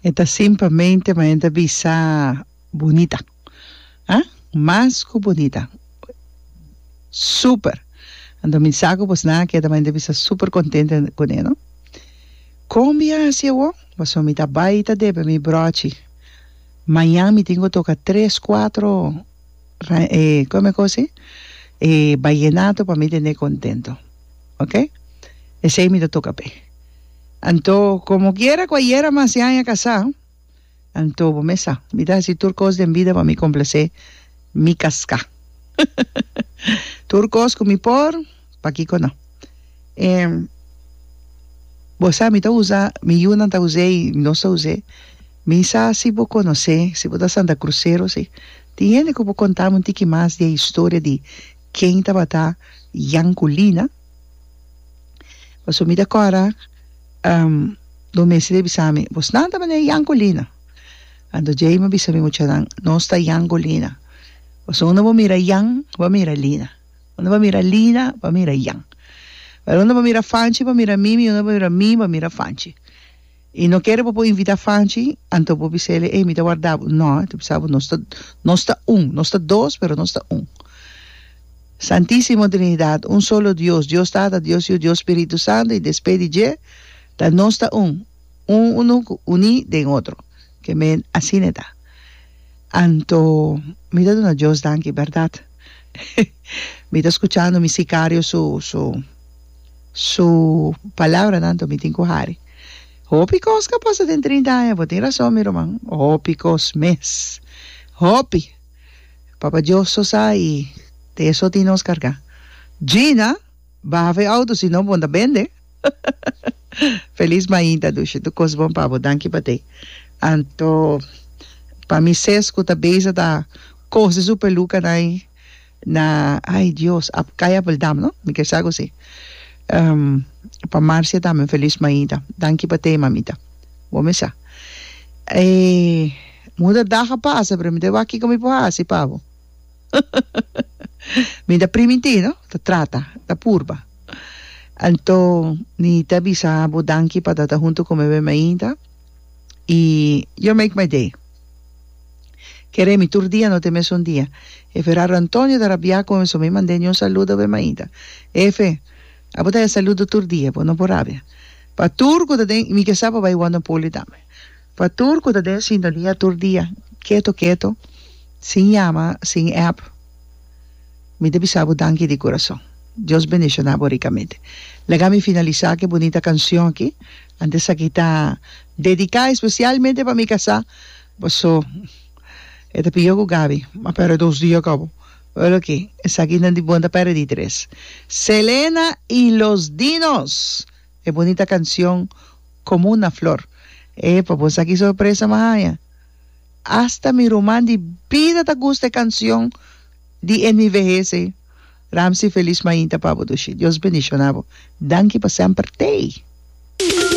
E ta simplemente ma e ta bisa bunita ha mas ku bunita super anto mi sa ku boso nan a keda ma e ta bisa super kontente kune no kon mi a hasi e wou paso mi ta bai ta debe mi brochi mañan mi tin ku toka tres kuatro kòmen kosi e bayenato pa mi tene kontento ok esey mi ta toca p'e anto como quiera cu ayera mas di aña casá anto bo mes sa mi ta haci tur cos den bida pa mi complacé mi casca tur cos cu mi por pakico no em bo sa mi ta usa mi yunan ta us'e y nos ta us'e mi sa si bo conocé si bo ta santa crucero si tin hende cu bo contabo'e un tiki mas di e historia di Ken tabata Yankulina? Paso mi ta kora do mes e bisa mi, Bos nan ta mane Yankulina? Anto djei mi a bisa mi muchanan, Nos ta Yankulina. Paso unda bo mira Yan, bo a mira Lina. Unda bo a mira Lina, bo a mira Yan. Unda bo a mira Fanchi, bo a mira mi, mi unda bo a mira mi, bo a mira Fanchi. Y no kere bo por invita Fanchi, anto bo bisele, ey mi ta warda bo. No, e ta bisa bo, nos ta, nos ta un, nos ta dos, pero nos ta un. Santisimo Trinidad, un solo Dios, Dios Tata, Dios Yu, Dios Spiritu Santo, y despe di dje, ta nos ta un, un unu cu uní den otro. Keme asina e ta. Anto, mi ta duna Dios danki, berdad. Mi ta scuchando mi sicario su, su. Su palabranan to mi tin ku hari. Hopi kos ka pasa den trinta aña, bo tin rason mi ruman, hopi kos mes, hopi. Papa Dios so sa i te eso tin nos kargá. Gina, baha fu e outo si no bo ta bende. Felis mainta Dushi, tur kos bon pa bo, danki pa te. Anto pa mi ses ku ta beza ta kose su pelukanan ei. Na ai Dios ap kai ap bldam no mi ke sa kosi pa Marcia tambe un felis maida danki pa tei mamita bo mi sa e muda dag a pasa pero mi ta wak kiko mi por hasi pa bo mi ta primiti no ta trata ta purba anto mi ta bisa bo danki pa tata hunto ku mi be maida. y yo make my day. Kere mi tur dia no te mesun dia. Efe raro Antonio ta rabia cu mi so mi mand'e ni un saludo be mainta. Efe, abo ta e saludo tur dia, bo no por rabia. Pa tur cu ta den, mi ke sa pa bay word poli tambe. Pa tur cu ta den sintonia tur dia, keto keto, sin yama, sin app, mi ta bisa bo danki di curason. Dios bendiciona bo ricamente. Laga mi finalisa cu e bunita cancion aki, Antes aki ta dedica especialmente pa mi casa paso e ta piyo cu Gaby a perde dos di yo cabo oye loke esaki nan di bon ta perdí tres Selena y los dinos e bonita cancion como una flor e pa bo esaki sorpresa mi a haña hasta mi ruman di bida ta gusta e cancion di en mi vehez ey Ramsey feliz mainta pa bo Dios bendicionabo danki pa semper tey.